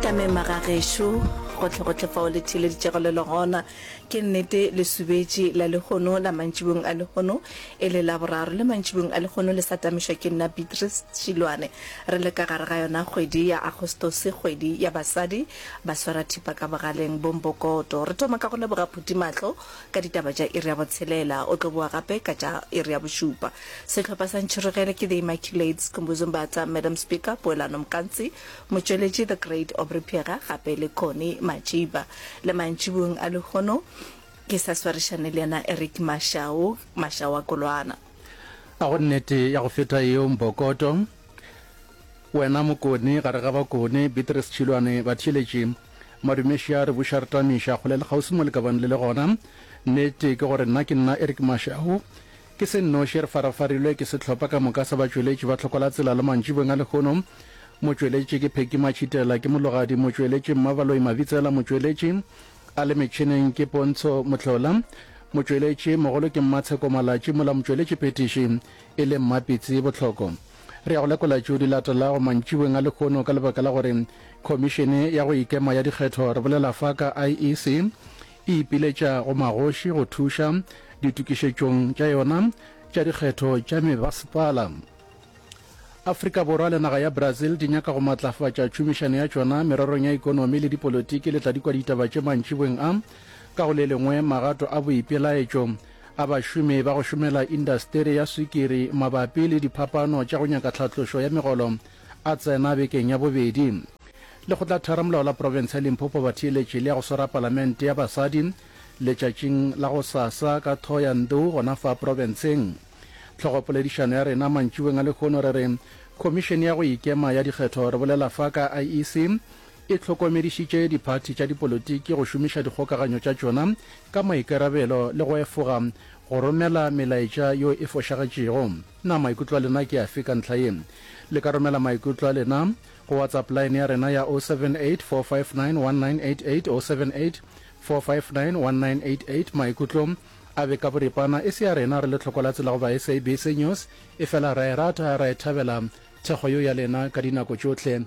ka mema ga gešo gotlhegotlhe fao le theeleditšego le le gona ke nnete lesubetši la lehono la mantšibong a lehono e le la boraro le mantšibong a lehono le sa tamišwa ke nna beatrice šilwane re le ka gare ga yona kgwedi ya agostose kgwedi ya basadi ba swara thipa ka bogaleng bombokoto re thoma ka go leboga phuthimahlo ka ditaba tša iri ya botshelela, o tlo boa gape ka tša iri ya bošupa. Sehlopha sa ntšhirogele ke The Immaculates, Skhumbuzo Mbatha, Madam Speaker, Poelano Mkantsi, motšweletši The Great Aubrey Phega gape le Connie Majiba. Le mantšibung a lehono ke sa swarišane le yena Eric Mashau, Mashau wa Kolwana. A go nnete ya go feta yeo Mbokoto, wena Mokone gare ga Bakone, Beatrice Tšhilwane, batheeletši, Madume Sha re buša re tamiša kgole le kgauswi mo le ka bang le le gona. Nnete ke gore nna ke nna Eric Mashau. Ke se nnoši re farafarilwe ke sehlopha ka moka sa batšweletši ba Tlhokola Tsela le mantšibeng a lehono. Motšweletši ke Pheki Matšhitela, ke mologadi motšweletši Mmabaloi Mabitsela, motšweletši a le metšhineng ke Pontsho Mohlola, motšweletši mogolo ke Mmatsheko Malatši mola motšweletši phetiši e le Mmapitsi Bohloko. Re ya go lekola tšeo di latelago mantšibeng a lehono ka lebaka la gore Khomišene ya go Ikema ya Dikgetho re bolela fa ka IEC e ipiletša go magoši go thuša ditokišetšong tša yona tša dikgetho tša mebasepala. Afrika Borwa le naga ya Brazil di nyaka go matlafatša tšhomišano ya tšona mererong ya ikonomi le dipolotiki le tla di kwa ditaba tše mantšibeng a ka go le lengwe magato a boipelaetšo a bašomi ba go šomela indasteri ya swikiri mabapi le diphapano tša go nyaka tlhatlošo ya megolo a tsena bekeng ya bobedi. Lekgotlatheramolao la profense ya Limpopo ba theeletše le ya go swara palamente ya basadi letšatšing la go sasa ka Thohoyandou gona fa profenseng. Tlhogopoledišano ya rena mantšiboeng a lehono re re, Khomišene ya go Ikema ya Dikgetho re bolela fa ka IEC e hlokomedišitše diphathi tša dipolotiki go šomiša dikgokaganyo tša tšona ka maikarabelo le go efoga go romela melaetša yo e fošagetšego. Na maikutlo a lena ke afe ka ntlha ye? Le ka romela maikutlo a lena go WhatsApp line ya rena ya 078-459-1988, 078-459-1988. Maikutlo a be ka boripana, e se a rena re le tlhokolatse la go ba SABC News, efela ra e rata, ra e thabela thekgo yo ya lena ka dinako tšohle.